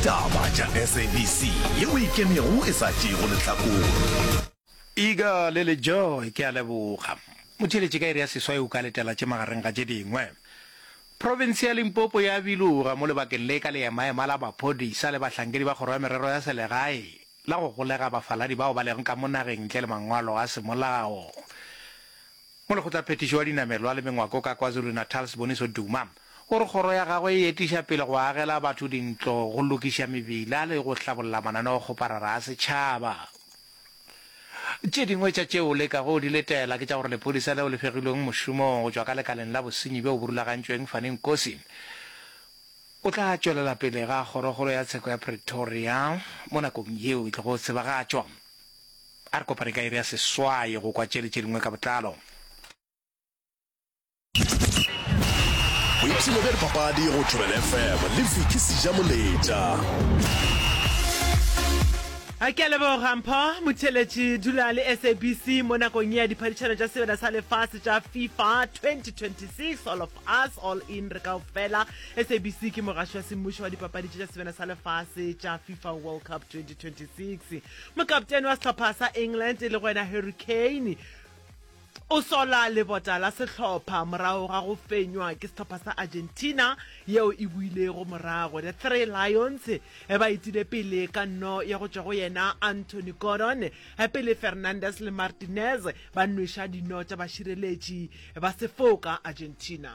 Taba tša SABC ye o ikemego e sa tšeego lehlakore. Eagerly le Joy, ke a leboga. Motheeletše ka iri ya seswai o ka letela tše magareng ga tše dingwe. Profense ya Limpopo ya biloga mo lebakeng le ka leemaema la maphodisa le bahlankedi ba kgoro ya merero ya selegae la go golega bafaladi bao ba lego ka mo nageng ntle le mangwalo a semolao. Molekgotlaphethiši wa dinamelwa le mengwako ka KwaZulu-Natal Siboniso Duma O re kgoro ya gagwe e etiša pele go agela batho dintlo, go lokiša mebila le go hlabolla mananeokgoparara a setšhaba. Tše dingwe tša tšeo o lekago go di letela ke tša gore lephodisa leo le fegilweng mošomong go tšwa ka lekaleng la bosenyi bjo burulagantšweng Fanny Nkosi o tla tšwelela pele ga Kgorokgolo ya Tsheko ya Pretoria mo nakong yeo e tlogo tsebagatšwa. A re kopane ka iri ya seswai go kwa tše le tše dingwe ka botlalo. boipshino bja dipapadi go tšhobela fm le viki sejamoletša a ke leboga mpho motheletši dula le sabc mo nakong ya diphadišano tša sebeda sa lefase tša fifa 2026 all of us all in re kao fela sabc ke mogaši wa semmušo wa dipapadi tša sebeda sa lefase tša fifa world cup 2026 mokaptene wa sehlopha sa england e le go wena harry kane O sola lebota la sehlopha morago ga go fenywa ke sehlopha sa Argentina yeo e builego morago. The Three Lions ba etile pele ka nno ya go tšwa go yena Anthony Gordon pele Fernandes le Martinez ba nweša dino tša bašireletši ba sefoka Argentina.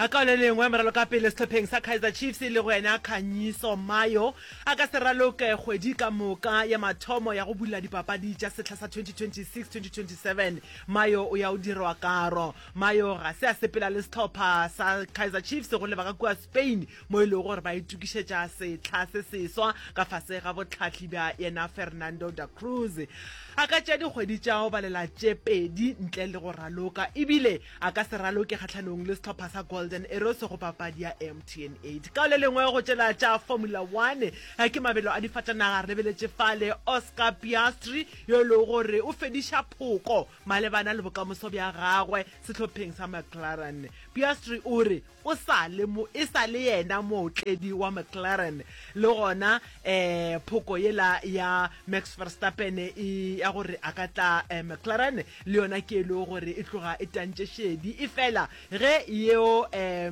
A Ka le lengwe, moralokapele sehlopheng sa Kaizer Chiefs e lego yena Khanyiso Mayo a ka se raloke kgwedi ka moka ya mathomo ya go bula dipapadi tša sehla sa 2026-2027. Mayo o ya o dirwa karo. Mayo ga se a sepela le sehlopha sa Kaizer Chiefs go lebaka kua Spain mo e lego gore ba itokišetša sehla se seswa ka fase ga bohlahli bja yena Fernando da Cruz. A ka tšea dikgwedi tša go balela tše pedi ntle le go raloka ebile a ka se raloke kgahlanong le sehlopha sa Golden Arrows go papadi ya MTN 8. Ka le lengwe go tšela tša Formula One ke mabelo a difatanaga re lebeletše fale Oscar Piastri yo e lego gore o fediša phoko malebana le bokamoso bja gagwe sehlopheng sa McLaren. Piastri o re, O sa le mo, e sa le yena mootledi wa McLaren. Le gona eh phoko yela ya Max Verstappen e ya gore a ka tla eh McLaren le yona ke e lego gore e tloga e tantše šedi. Efela ge yeo eh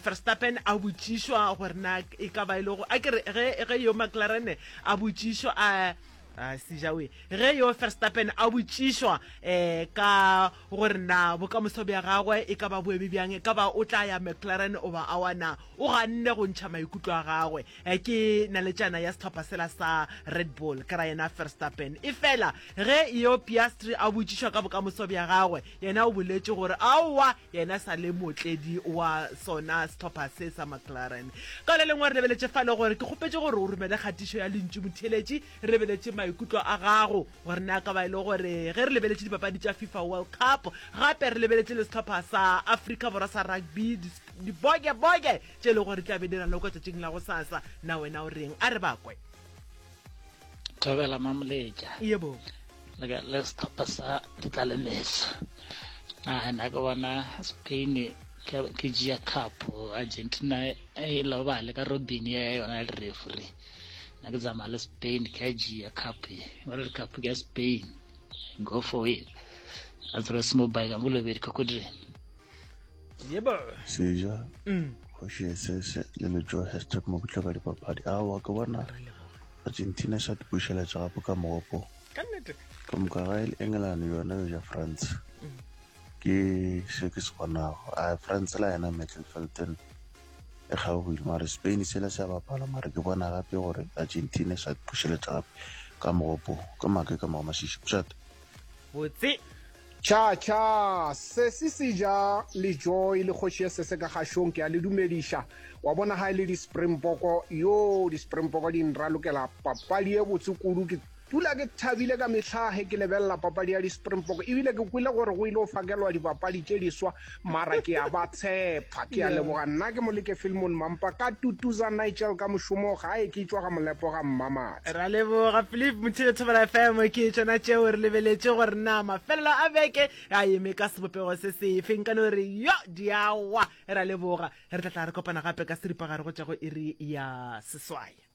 Verstappen a botšišwa gore na e ka ba e lego, a ke re ge, ge yo McLaren a botšišwa a, a sejawe, ge yo Verstappen a botšišwa eh ka gore na bokamoso bja gagwe e ka ba bo eme bjang, e ka ba o tla ya McLaren goba awa. Na o ganne go ntšha maikutlo a gagwe? Ke naletšana ya sehlopha sela sa Red Bull, ke ra yena Verstappen. Efela ge Eo Piastri a botšišwa ka bokamoso bja gagwe, yena o boletše gore aowa, yena e sa le mootledi wa sona sehlopha se sa McLaren. Ka le lengwe, re lebeletše fa le gore ke kgopetše gore o romele kgatišo ya Lentšu Motheeletši, re lebeletše maikutlo a gago. gore na ka ba e le gore ge re lebeletše dipapadi tša fifa world cup gape re lebeletše le setlhopha sa africa borwa sa rugby dibokeboke tše e le gore tla be di ralokwa tšatšing la go sasa na wena o reng a re bakwe thobela mamoletša yebo le setlhopha sa ditlalemetso nagana ke bona spain ke jea cup argentina e lobale ka robin ya yona le referee na ke tsamaya le spain ke a jea cup e ba re cup ke ya spain go for it a tsere se mobile ka molobedi ka kodire yebo seja mm. kgoši esese le lejo hashtag mo kutlwa ka dipapadi a wa ke bona argentina sa dipušeletša gape ka mogopo ka moka ga ele england yona yo ja france mm. ke se ke se bonago a france la yena metlelfelton e kgaogile mare spain sela se a bapala mare ke bona gape gore argentina sa pušeletsa gape ka mogopo ka make ka mogo masisi bjata botse tšhatšha sesi se ja lejoy le kgoši ye sese ka gašong ke a le dumediša wa bona ga e le di-springboko yo di-springboko di nralokela papadi ye botse kudu ke Dula ke thabile ka mehla ge ke lebelela papadi ya di-Springbok ebile ke kwile gore go ile go fakelwa dibapadi tše diswa mara ke a ba tshepa. Ke a leboga. Nna ke Moleke Filmon Mampa ka tutuza Nigel ka mošomo gae ke tšwa ga Molepo ga Mmamate. Ra leboga Philip Mothibe Thobela FM ke tšona tšeo re lebeletše gore na mafelelo a beke a eme ka sebopego se sefe nka no re yo di a wa. Ra leboga. Re tla tla re kopana gape ka seripagare go tša go iri ya seswai.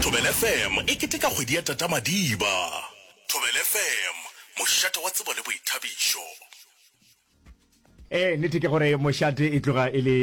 Thobela FM e keteka kgwedi ya Tata Madiba. Thobela FM, mošate wa tsebo le boithabišo. Ee, nnete ke gore mošate e tloga e le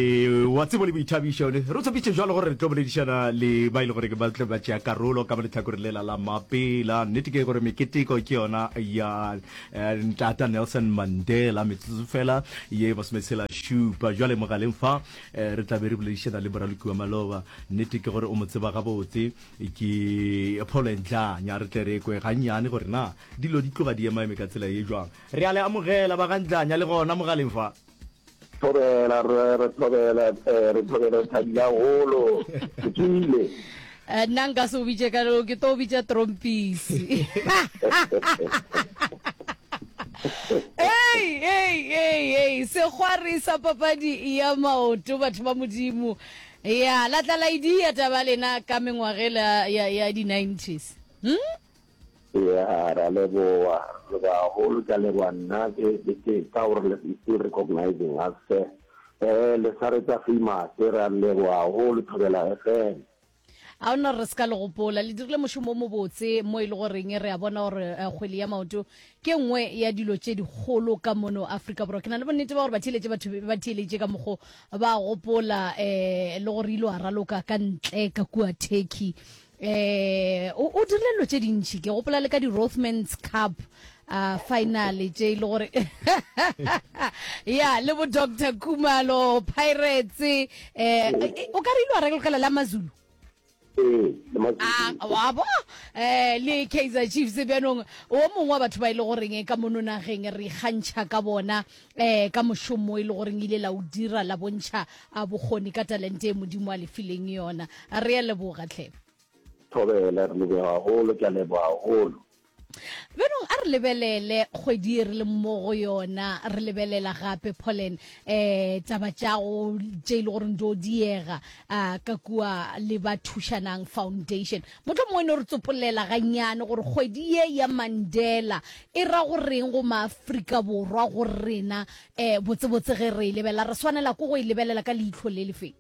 wa tsebo le boithabišo. Re o tshepitše jalo gore re tlo boledišana le ba e le gore ba tlo ba tšea karolo ka mo lehlakoreng lela la mapela. Nnete ke gore meketeko ke yona ya eh, ntata Nelson Mandela metsotso fela ye masometshela šupa jwale mogaleng fa Re tla be re boledišana le Moralokiwa Maloba. Nnete ke gore o mo tseba gabotse. Ke Paul and Jane. A re tle re ekwe gannyane gore na dilo di tloga di ema-eme ka tsela ye jwang. Re a le amogela ba ga Ndlanya le gona mogaleng fa. Thobela, Rre. Re thobela, re thobela, re thabile gagolo. Ke tswile. Eh, nna nka se o bitše ka leo ke to o bitša trompisi ei ei ei ei segwari sa papadi ya maoto batho ba modimo ya latlalaidi ya taba lena ka mengwagela ya, ya di-90s hmm? Eya, re a leboga. Le bagolo, ke a leboga. Nna ke, ke, ke ka gore le, you still recognizing us, sir. Eh, le sa re tsa famous, re a le leboga haholo, Thobela FM. A ona re se ka le gopola, le dirile mošomo o mobotse mo e le goreng re a bona gore eh, kgwele ya maoto ke nngwe ya dilo tše dikgolo ka mono Afrika Borwa. Ke na le bonnete ba gore batheeletše batho be ba theeletše ka mokgo ba gopola eh, le gore ile wa raloka ka ntle ka kua Turkey. Ee, o, o dirile dilo tše dintši. Ke gopola le ka di-Rothmans Cup uh, finale tše e le gore ya le bo doctor kumalo pirates eh, eh, o ka re ile wa regelogela la mazulu ee, ah, wa bo eh le kaizer chiefs bjanong o mongwe wa batho ba e le goreng ka mono nageng re ikgantšha ka bona Ee, ka mošomo e le goreng ile la o dira, la bontšha a bokgoni ka talente e Modimo a le fileng yona. Re a leboga, tlhe. Thobela, re leboga gagolo. Ke a leboga gagolo. Bjanong a re lebelele kgwedi ye re leng mo go yona. Re lebelela gape, Pauline, um taba tša go, tše e le goreng di yo diega, um ka kua le ba Thušanang Foundation. Mohlomongwe no re tsopolela gannyane gore kgwedi ye ya Mandela e ra go reng go maAfrika Borwa go rena. E, botsebotse ge re e lebelela, re swanela ke go e lebelela ka leihlo le le feng?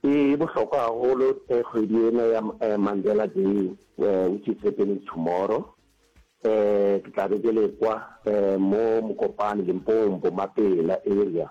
E bohlokwa gagolo kgwedi ena ya Mandela Day, which is happening tomorrow. E, ke tla be ke le kwa mo Mokopane, Limpopo, Mapela area.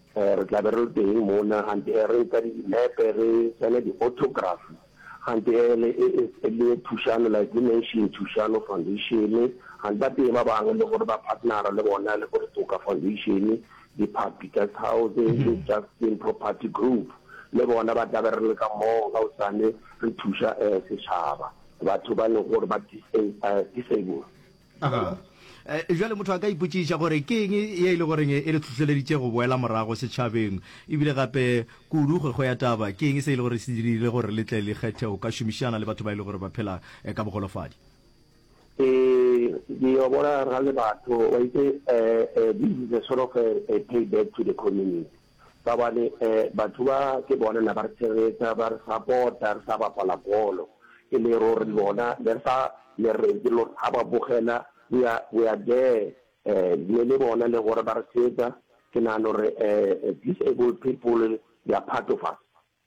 Re tla be re le teng mona, gante e re nka dinepe, re tsene di-autograph, gante e le, e, e, e le thušano, like we mentioned Thušano Foundation, gante ba teng ba bangwe le gore ba partnera le bona, le bo Retoka Foundation, Diphapi Guest House, le Justin Property Group, le bona ba tla be re le ka moo ka gosane re thuša, eh, setšhaba, batho ba e lego gore ba dis-, eh, uh, disabled. Eh, jale motho a ka ipotsiša gore ke eng ye e le goreng e le tlhohleleditše go boela morago setšhabeng ebile gape kudu kgwekgo ya taba ke eng se e le gore se dirile gore le tle le kgethe go ka šomišana le batho ba e le gore ba phela eh, ka bogolofadi um yo bona ra le batho wa itse um this is a sort of a, a pay back to the community Ka gobane batho ba ke bona na ba re tshegetsa, ba re sapota, re sa bapala bolo. E le ruri lona ne re sa le reng ke lore ga ba bogela we are we are there ne le bona le gore ba re tshegetsa. Ke nagana gore disabled people they are part of us.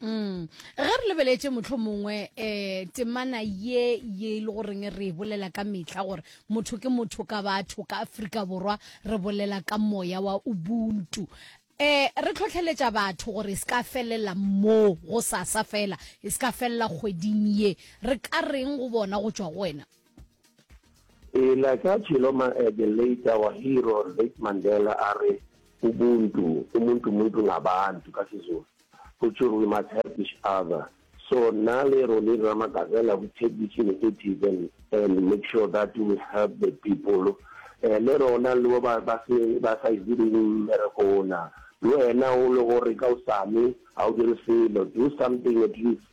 Mm. ge re lebeletse motlho mongwe um eh, temana ye ye e le goreng re e bolela ka metlha gore motho ke motho ka batho ka aforika borwa re bolela ka moya wa ubuntu um re tlhotlheletša batho gore e se ka felela moo go sasa fela e se ka felela kgweding ye re ka reng go bona go tšwa go wena Pele ka Tshiloma Adelaide wa Hero Ryk Mandela a re, Ubuntu, umuntu muntu ngabantu ka Sizulu, go tšhur we must help each other. So nna le Ronnie Ramagavela we take this initiative and and make sure that we help the people. Eh, le rona le bo ba ba se ba sa direng mmereko ona, le wena o le gore ka osane ga o dire selo, do something at least.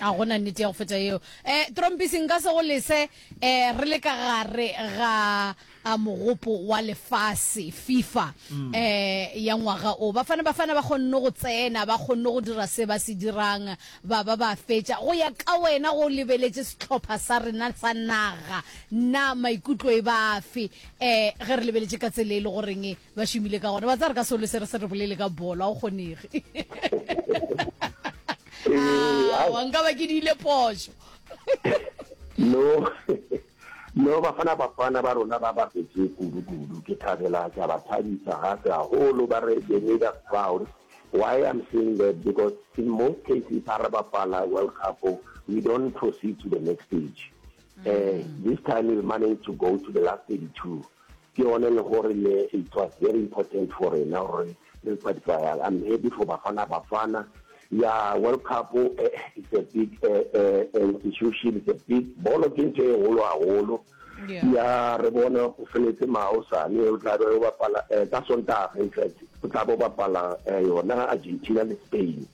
a go na nnete ya go feta eo um trompisi nka se go lese um re le ka gare ga mogopo wa lefase fifa um ya ngwaga o bafana bafana ba kgonne go tsena ba kgonne go dira se ba se dirang ba ba ba fetša go ya ka wena go lebeletse setlhopha sa rena sa naga na maikutlo e bafe um ge re lebeletse ka tsela e le goreng ba šomile ka gona ba tsa re ka solo se re se re bolele ka bolo a o kgonege ah, wa nka ba ke diile poso no no bafana bafana ba rona ba bapetse kudu-kudu ke thabela ka ba thabisa gape haholo ba re they made us proud why i'm saying that because in most cases ha re bapala world cup we don't proceed to the next stage mm. uh, this time we managed to go to the last 32 Ke yone le gore le it was very important for rena gore re qualifyang. I'm happy for Bafana Bafana. Ya World Cup it's a big institution, it's a big, bolo ke ntho e kgolo haholo. Ya re bona o feletse ma hosane o tla be o bapala ka Sontaga in fact o tla bo bapala yona Argentina le Spain.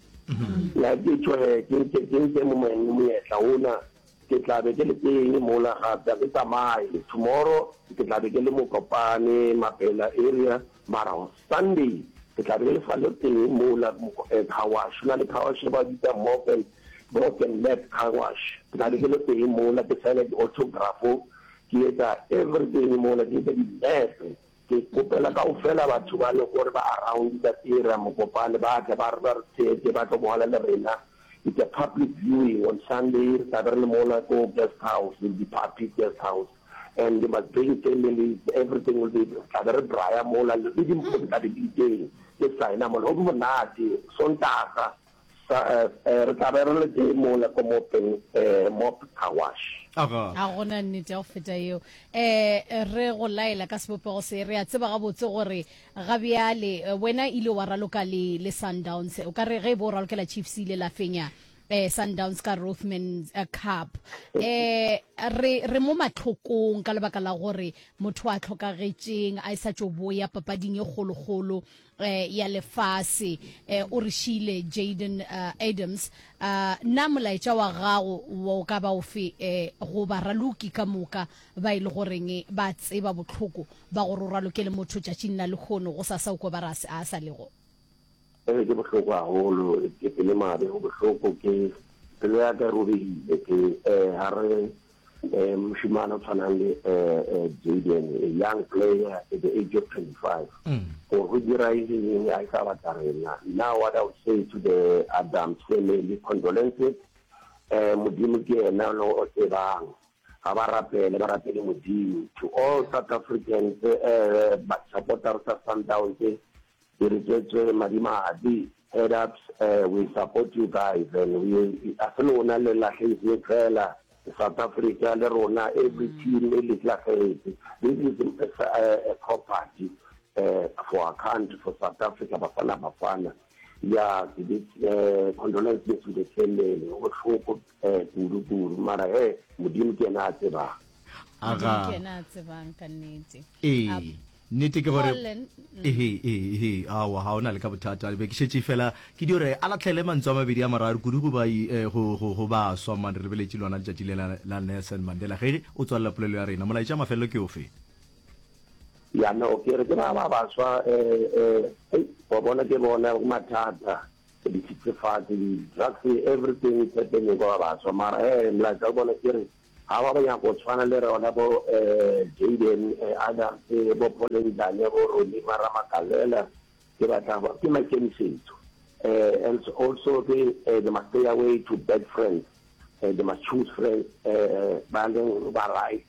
Ya ke tshwere ke ntse mo moyeng monyetla ona. Ke tla be ke le teng mola gape, ga ke tsamaye. Tomorrow ke tla be ke le Mokopane, Mabhela area, mara on Sunday ke tla be ke le sa le teng mola car wash, go na le car wash e ba bitsa Morgan, Morgan Map car wash. Ke tla be ke le teng mola ke sign-a di-autograph, ke etsa everything mola, ke etsa dinepe. Ke kgopela kaufela batho ba Legore ba around ba Tira Mokopane ba tle ba ba re theetše ba tlo bohela le rena. It's a public viewing on Sunday, re tla be re le mona ko guest house, will be Phaphis guest house and you must bring families, everything will be, re tla be re braya mola le dimpho di tla be di le teng, ke sign-a mola. Go be monate, Sontaga. Sa, eh, re tla be re le tee mola ko mopeng, eh, mop car wash. Aga. A go na nnete ya go feta yeo. Eh, re go laela ka sebopego se, re a tseba gabotse gore ga bjale eh, wena ile wa raloka le, le Sundowns. O ka re ge e bo o ralokela Chiefs ile la fenya eh, Sundowns ka Rothman eh, Cup. Eh, re, re mo matlhokong ka lebaka la gore motho a tlhokagetšeng, a e sa tšo boya papading e kgolokgolo. ya lefase. O re šiile Jayden Adams. Na molaetša wa gago o ka ba ofe go baraloki ka moka ba e le goreng ba tseba bohloko ba gore o raloke le motho tšatšing la lehono, go sa saukwa ba re a a sa lego? Ee, ke bohloko gagolo. Ke pelo e mabe, go bohloko. Ke, pelo ya ka e robegile. Ke, ga re, um mošemane o tshwanang le um jaden a young player at the age of 25 mm. gore go dira eng a e sa batla rena now what i would say to the adam family condolences um modimo ke ena le o tsebang ga ba rapele ba rapele modimo to all south africans um eh, basupporters sa sundowns Direketše madimabe, head ups, eh, we support you guys and we, a se lona le lahlehetseng fela, South Africa le rona, every team e le lahlehetse, this is a property eh, for our country, for South Africa, Bafana Bafana, ya ke di eh, condolences to the family, go bohloko eh, kudu kudu, mara he, Modimo ke yena a tsebang. Modimo ke yena a tsebang ka nnete. Ee. Nnete ke gore, Collen, mm. Ehe, ehe, ehe, aowa, ga o na le ka bothata. Be ke šetše fela ke dio re a latlhele mantso a mabedi a mararo kudu go ba, i, eh, go, go, go baswa. Man, re lebeletše lona letšatši le la, la Nelson Mandela. Ge o tswalela polelo ya rena, molaetša wa mafelelo ke ofe? Ya no, ke re ke ba, ba baswa, eh, eh, hei, wa bona ke bona mathata, dithethefatsi, di-drugs, everything is happening kwa ba baswa. Mara, eh, molaetša wa bona ke re, Ga ba ba nyaka go tshwana le rona bo Jayden Adams, bo Paul Nzane, bo Ronnie Mara Makalela, ke batla go ke maikemisetso and also ke they must stay away to bad friends, they must choose friends ba leng ba right,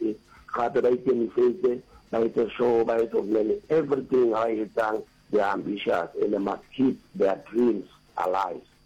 gape ba ikemisetse ba etse sure ba etse gore le everything ba e etsang they are ambitious and they must keep their dreams alive.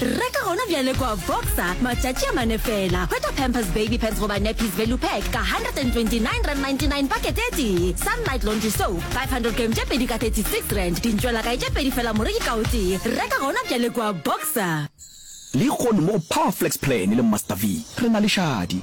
reka gona bjale kwa voxa matšatši a mane fela hwetša pampers baby pants goba nappies value pack ka 129 rand 99 pakete e tee sunlight laundry soap 500 gram tše pedi ka 36 rand dintšwela kae tše pedi fela moreki ka o tee reka gona bjale kwa boxer lehono mo go powerflex plan le master v re na le šadi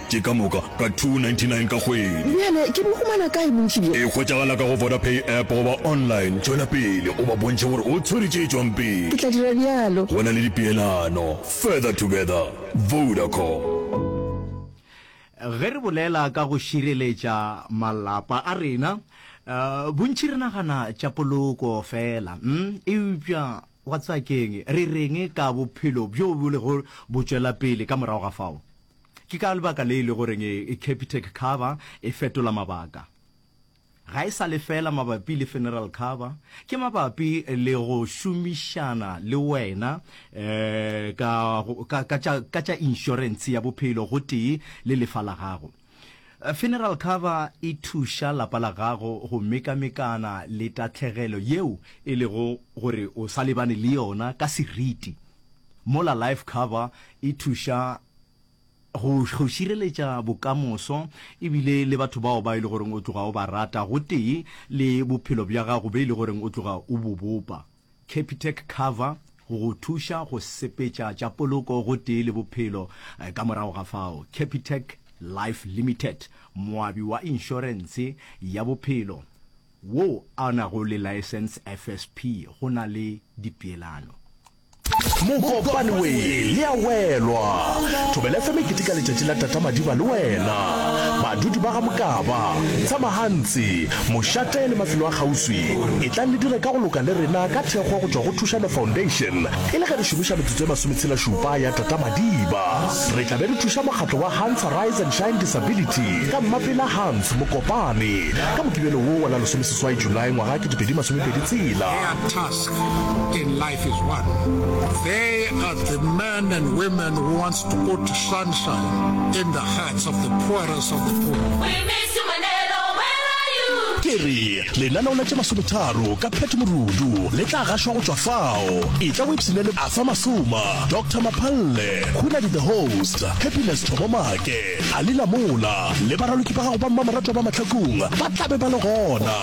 Ke ka moka ka 299 ka kgwedi. Bjale ke bo humana kae bontši bjo? E hwetšagala ka go Vodapay app goba online. Tšwela pele o ba bontšhe gore o tshwere tše tšwang pele. Ke tla dira bjalo. Go na le dipeelano. Further together. Vodacom. Ge re bolela ka go šireletša malapa a rena, bontši re nagana tša poloko feela. Eupša wa tseba ke'ng? Re re'ng ka bophelo bjo bo lego bo tšwela pele ka morago ga fao? Ke ka lebaka le e lego reng Capitec Cover e fetola mabaka. Ga e sa le feela mabapi le Funeral Cover, ke mabapi le go šomišana le wena ka, ka, ka tša, ka tša inšorentshe ya bophelo gotee le lefa la gago. Funeral Cover e thuša lapa la gago go mekamekana le tahlegelo yeo e lego gore o sa lebane le yona ka seriti, mola Life Cover e thuša go, go šireletša bokamoso, e bile le batho bao ba e le goreng o tloga o ba rata, gotee le bophelo bja gago be e le goreng o tloga o bo bopa. Capitec Cover, go go thuša go sepetša tša poloko gotee le bophelo. Ka morago ga fao, Capitec Life Limited, moabi wa inšorense ya bophelo wo a nago le laesense, FSP, go na le dipeelano. Mokopane we le a welwa. Thobela FM e keteka letšatši la Tata Madiba le wena. Badudi ba ga Mokaba, Tsamahantsi, Mošate le mafelo a kgauswi, etlang le dire ka go loka le rena ka thekgo go tšwa go Thušano Foundation e le ge re šomiša metsotso e masometshela-šupa ya Tata Madiba. Re tla be re thuša mokgatlo wa Hans Arise and Shine Disability ka Mmapela Hans Mokopane ka Mokibelo wo wa la lesomeseswai Julae ngwaga wa ketepedi masomepedi tshela. in life is one. They are the men and women who wants to put sunshine in the hearts of the poorest of the poor. We miss you, Manelo. Where are you? ke re lenaneo la tše masometharo ka pheto morudu le tla gašwa go tšwa fao e tla websine le afa masoma dr maphalle khunadi the host happiness thomomake Ga le na mola, le baraloki ba gago ba mmamoratwa ba mahlakong ba tla be ba le gona.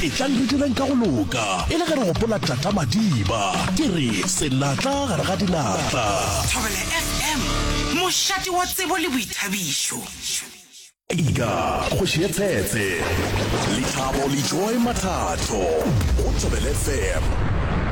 Etlang re direng ka go loka, e le ge re gopola Tata Madiba. Ke re, Senatla gare ga dinatla. Thobela FM, mošate wa tsebo le boithabišo. Ika, kgoši ye tshetse. Lethabo le Joy Mathato go Thobela FM.